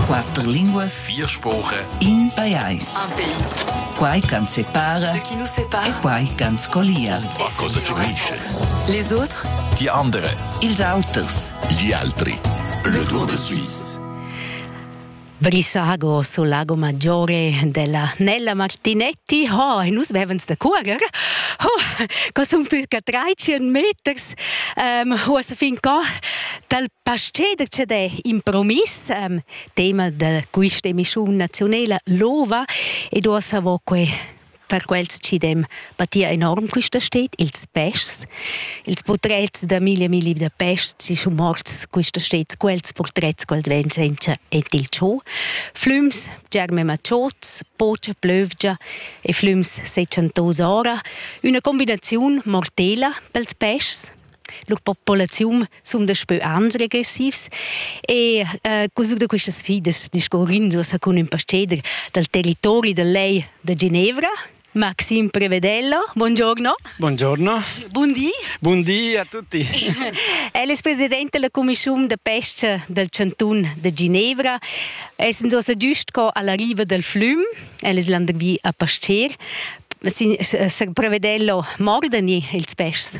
Quatter linguas, vier spuche, in pajais. Un pays. Quai ch'ans separa, Ce qui nous sépare, e quai ch'ans collia. Was kostet die Menschen? les autres, Die andere, ils auters. Gli altri. Le Tour de Suisse. Brisago sul lago maggiore della Nella Martinetti. Oh, nus vevens da cuoger. Oh, co sum tuca 13 meters. Um, uossa fin co dal pasceder c'è d'è impromiss, um, tema da questa emissione nazionale, l'ova, ed uossa vo que Per quels chi dem patia enorm quista sted, ils peschs. Ils purtrets da mille milli da peschs sun morts quista sted, quels purtrets quels ven senza ed il cho. Flüms, germe macciots, pocha plövgia e flüms sechantos ora. Üna combinaziun mortela pels peschs. la populaziun sun daspö ans regressivs e eh, cusut da quistas sfidas discurrins sa cun ün pasteder dal territori da lei da Ginevra Maxime Prevedello, buongiorno. Buongiorno. Buondì. Buondì a tutti. El es president della Commissiun da pesca del Cantun de Ginevra. Essend ossa giust co alla riva del flüm, el es landervi a Pasteur, Prevedello mordani ils peschs.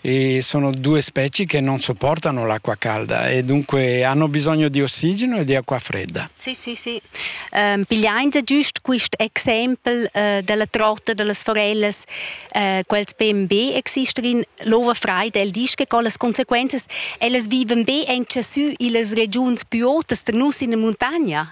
e sono due specie che non sopportano l'acqua calda e dunque hanno bisogno di ossigeno e di acqua fredda. Sì, sì, sì. Um, pigliain se giust quist exempel uh, della trotta delle forelles uh, quels ben be exister in l'ova freida el disch che con las consequences ellas viven be en sü illas regions più otas tra nus in la montagna.